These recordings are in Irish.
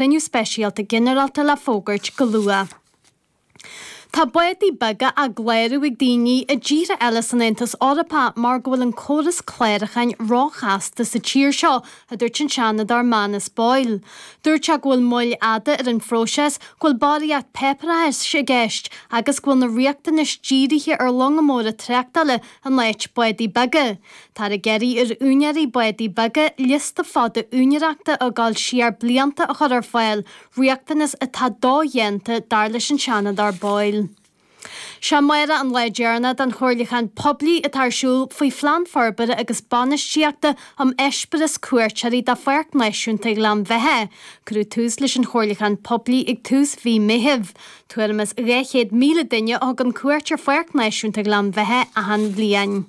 cruinniú speisialta ginearálta le fógairt go luath. Tá bádaí beaga á gclárú ag daoine i dtíortha eile san Aontas Eorpach mar go bhfuil an córas clárucháin róchasta sa tír seo, a dúirt an Seanadóir Manus Boyle. Dúirt sé go bhfuil moill fhada ar an phróiseas, go bhfuil barraíocht páipéarachais i gceist agus go bhfuil na riachtanais dírithe ar longa móra tráchtála in áit bádaí beaga. Táthar ag iarraidh ar úinéirí bádaí beaga liosta fada úinéireachta ag gabháil siar blianta a chur ar fáil, riachtanas atá dodhéanta dar leis an Seanadóir Boyle. Sé amárach an lá deireanach den chomhairliúchán poiblí atá ar siúl faoi Phlean Forbartha agus Bainistíochta um Eispéireas Cuairteoirí do Pháirc Náisiúnta Ghleann Bheithe. Cuireadh tús leis an chomhairliúchán poiblí ag tús mhí Meithimh. Tuairim is 200,000 duine a thugann cuairt ar Pháirc Náisiúnta Ghleann Bheithe achan bhliain.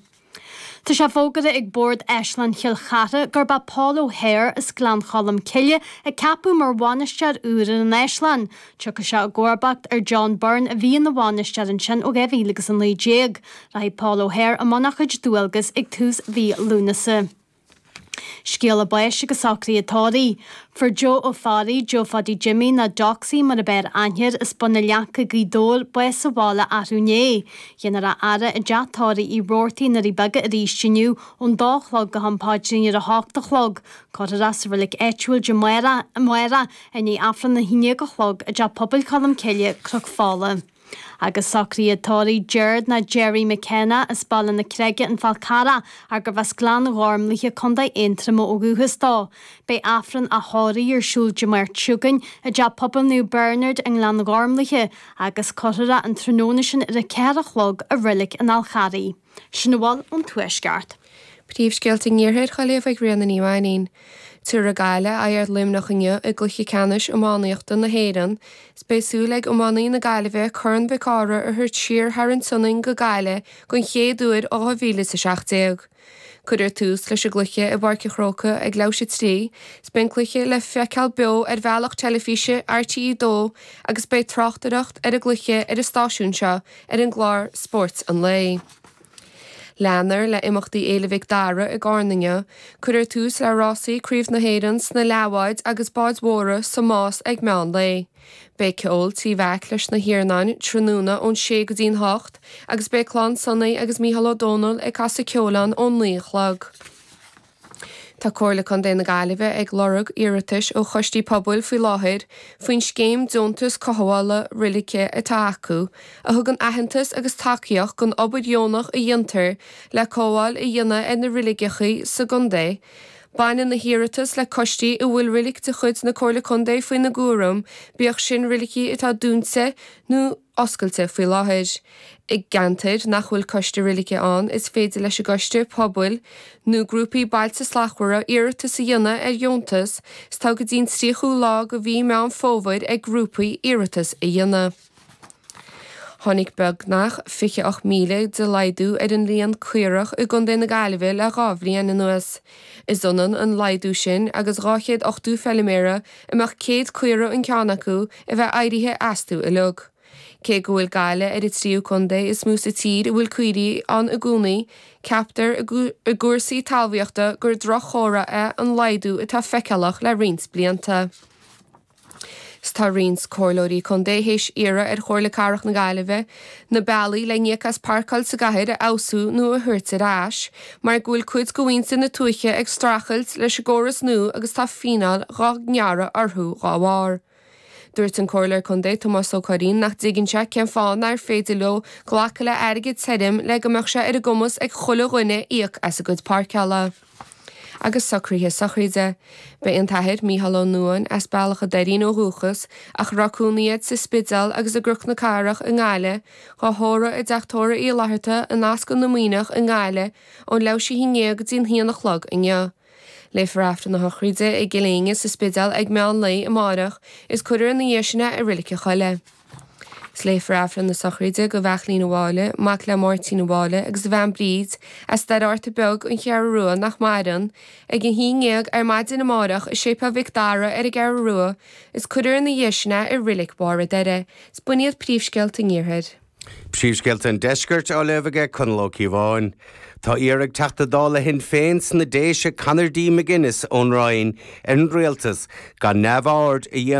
Tá sé fógartha ag Bord Áislann Chill Chartha gurb é Paul O'Hare as Gleann Cholm Cille a ceapadh mar bhainisteoir úr ar an Áislann. Tiocfaidh sé i gcomharbacht ar John Byrne a bhí ina bhainisteoir ansin ó 2019. Rachaidh Paul O'Hare i mbun a chuid dualgas ag tús mhí Lúnasa. Scéala báis agus socruithe tórraimh. Fuair Joe Ó Fearraigh, Joe Phaddy Jimmy, nó Jocksy mar ab fhearr aithne air, as Bun an Leaca, Gaoth Dobhair, bás sa bhaile arú inné. Dhéanfar a fhaire i dteach tórraimh Uí Rabhartaigh i nDoirí Beaga aríst inniu ón dó a chlog go ham paidrín ar a hocht a chlog. Cuirfear é sa reilig áitiúil amárach, i ndiaidh Aifreann a haon déag a chlog, i dteach pobail Cholm Cille, Cnoc Fola. agus socruithe tórraimh, Gerard nó Jerry McKenna as Baile na Creige, An Fál Carrach, arbh as Gleann Ghormlaithe, Co. Aontroma ó dhúchas dó. Beidh Aifreann a thórraimh ar siúl Dé Máirt seo chugainn i dTeach Pobail Naomh Bernard i nGleann Ghormlaithe, agus cuirfear é an tráthnóna sin ar a ceathair a chlog i Reilig an Fháil Charraigh. Sin a bhfuil ón Tuaisceart. Príomhscéalta an Iarthair á léamh ag Ríona Ní Mhainnín. Tabharfaidh Gaillimh aghaidh ar Luimneach inniu i gCluiche Ceannais Iománaíochta na hÉireann is beidh súil ag iománaithe na Gaillimhe Corn Mhic Cárthaigh a thabhairt siar thar an tSionainn go Gaillimh den chéad uair ó 2017. Cuirfear tús leis an gcluiche i bPáirc an Chrócaigh ag leathuair tar éis a trí is beidh an cluiche le feiceáil beo ar bhealach teilifíse RTÉ 2 agus beidh tráchtaireacht ar an gcluiche ar an stáisiún seo ar an gclár Spórt an Lae. Leanfar le imeachtaí Fhéile Mhic Dara i gCarna inniu. Cuirfear tús le rásaí Craobh na hÉireann sna leathbháid agus báid mhóra sa Más ag meán lae. Beidh ceol Tigh Mheaic leis na hIarnáin tráthnóna ón sé go dtí'n hocht agus beidh Clann Sonaí agus Micheál Ó Domhnaill ag casadh ceoil ann ón naoi a chlog. Tá Comhairle Contae na Gaillimhe ag lorg iarratais ó choistí pobail faoi láthair faoin scéim deontas cothabhála roilice atá acu, a thugann aitheantas agus tacaíocht don obair dheonach a dhéantar le cothabháil a dhéanamh ar na roiligheacha sa gcontae. Baineann na hiarratais le coistí a bhfuil roilic de chuid na Comhairle Contae faoina gcúram, bíodh sin roilicí atá dúinte nó. oscailte faoi láthair. I gceantair nach bhfuil Coiste Roilice ann, is féidir leis an gCoiste Pobail nó grúpaí Bailte Slachtmhara iarratas a dhéanamh ar dheontas 's tá go dtí'n 30ú lá de mhí Meán Fómhair ag grúpaí iarratas a dhéanamh. Tháinig beagnach 28,000 de laghdú ar an líon caorach i gContae na Gaillimhe le dhá bhliain anuas. Is ionann an laghdú sin agus dhá chéad ochtó feiliméara a mbeadh céad caora an ceann acu a bheith éirithe astu uiliog. Cé go bhfuil Gaillimh ar an tríú contae is mó sa tír a bhfuil caoirigh ann i gcónaí, ceaptar i gcúrsaí talmhaíochta gur drochchomhartha é an laghdú atá feiceálach le roinnt blianta. 'S tá roinnt Comhairleoirí Contae théis iarraidh ar Chomhairle Cathrach na Gaillimhe na bealaí le n-íoc as páirceáil sa gcathair a fheabhsú nó a thabhairt ar ais mar go bhfuil cuid de mhuintir na tuaithe ag streachailt leis an gcóras nua agus tá fíneáil dhá ngearradh orthu dhá bharr. Dúirt an Comhairleoir Contae Tomás Ó Curraoin nach dtuigeann sé cén fáth nár féidir leo glacadh le airgead tirim le go mbeadh sé ar a gcumas ag chuile dhuine íoc as a gcuid páirceála. agus socruithe sochraide. Beidh an tAthair Micheál Ó Nuáin, as Bealach a' Doirín ó dhúchas, ach a raibh cónaí air sa Spidéal agus i gCnoc na Cathrach i nGaillimh, dhá thórramh i dteach tórraimh Uí Fhlatharta in Ascaill na Muimhneach i nGaillimh ón leathuair théis a haon ndéag go dtí an haon a chlog inniu. Léifear Aifreann na sochraide i gCill Éinne sa Spidéal ag meán lae amáireach, is cuirfear ina dhiaidh sin é i Roilic a' Choilligh. Is léifear Aifreann na sochraide do Bheairtlín a' Mháille, mac le Máirtín a' Mháille agus a bhean Bríd, as Doire Fhatharta Beag, An Cheathrú Rua, nach maireann, ag a haon ndéag ar maidin amáireach i Séipéal Mhic Dara ar an gCeathrú Rua is cuirfear ina dhiaidh sin é i Roilic Bharr an Doire. Is b'in iad príomhscéalta an Iarthair. Príomhscéalta an Deiscirt á léamh aige Conall Ó Cíobháin. Tá iarrtha ag Teachta Dála Shinn Féin sna Déise Conor D. McGuinness ón Rinn ar an Rialtas gan neamhaird a dhéanamh